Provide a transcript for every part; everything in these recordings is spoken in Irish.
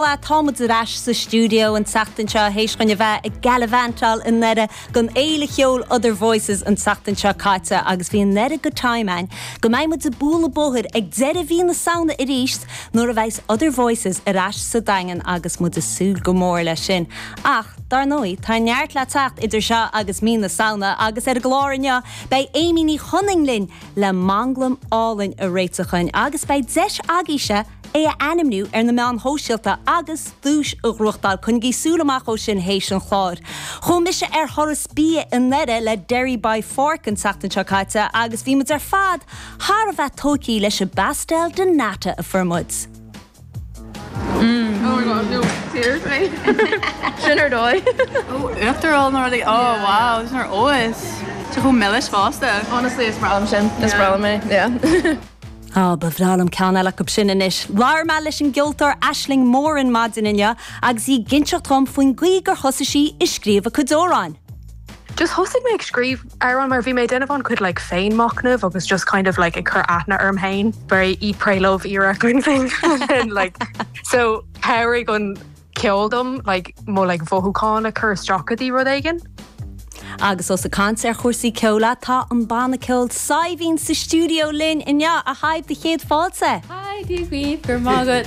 Bhuel, tá muid ar ais sa stiúideo an tseachtain seo théis dhuinn a bheith ag galavantáil i nDoire don fhéile cheoil Other Voices an tseachtain seo caite agus bhí an oiread de time againn go mbeidh muid ag bualadh bóthair ag deireadh mhí na Samhna arís nuair a bheidhs Other Voices ar ais sa Daingean agus muid ag súil go mór leis sin. Ach, dár ndóigh, tá neart le teacht idir seo agus mí na Samhna agus ar an gclár inniu beidh Amy Ní Chonaing linn le manglam álainn a réiteach dhuinn agus beidh deis agaíse é a ainmniú ar na meáin shóisialta agus duais a ghnóthachtáil, coinnigí súil amach dhó sin théis an chláir. Chuaigh mise ar thuras bia i nDoire le Derry by Fork an tseachtain seo caite agus bhí muid ar fad thar a bheith tóigtí leis an bpastel de nata a fuair muid. Sin ar dóigh. Uachtarán nó rudaí. Ó wow, is mar óis. Is chomh milis fosta. Honestly, is breá liom sin. Is breá liom é. Yeah. Á, ba bhreá liom ceann eile acu sin anois! Labhair mé leis an gceoltóir Aisling Moran maidin inniu agus í ag inseacht dhom faoin gcaoi gur thosaigh sí ag scríobh a cuid amhráin. Just thosaigh mé ag scríobh amhráin mar bhí mé ag déanamh an-chuid like féin machnamh agus just kind of like ag cur aithne orm féin very eat pray love era kind of thing and then like so chabhraigh an ceol dom like mo like mhothúcháin a chur isteach go dtí rud éigin. Agus ós ag caint ar chúrsaí ceoil é, tá an banna ceoil Saidhbhín sa stiúideo linn inniu. A Shaidhbh, do chéad fáilte! Hi, Dia dhaoibh, go raibh maith agat!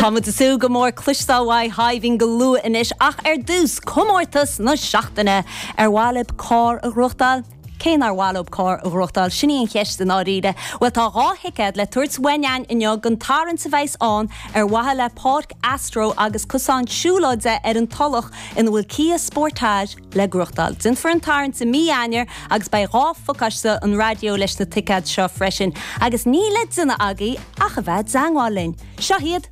Tá muid ag súil go mór cloisteáil uaidh Shaidhbhín go luath anois ach ar dtús, comórtas na seachtaine! Ar mhaith libh carr a ghnóthachtáil? Cé nár mhaith leo carr a ghnóthachtáil, sin í an cheist i ndáiríre. Bhuel, tá dhá thicéad le tabhairt uainn inniu don tarraingt a bheas ann ar mhaithe le Páirc Astro agus cosán siúlóide ar an Tulach ina bhfuil Kia Sportage le gnóthachtáil. Déanfar an tarraingt i mí Eanáir agus beidh dhá phacáiste an raidió leis na ticéid seo freisin. Agus níl le déanamh agaibh ach a bheith i dteangmháil linn. Seo hiad.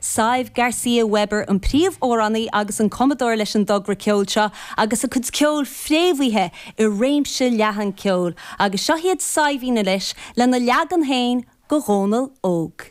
Sadhbh Garcia Weber an príomhamhránaí agus an cumadóir leis an dtogra ceoil seo agus a cuid ceoil fréamhaithe i réimse leathan ceoil agus seo iad Saidhbhín anois lena leagan féin de Dhónall Óg.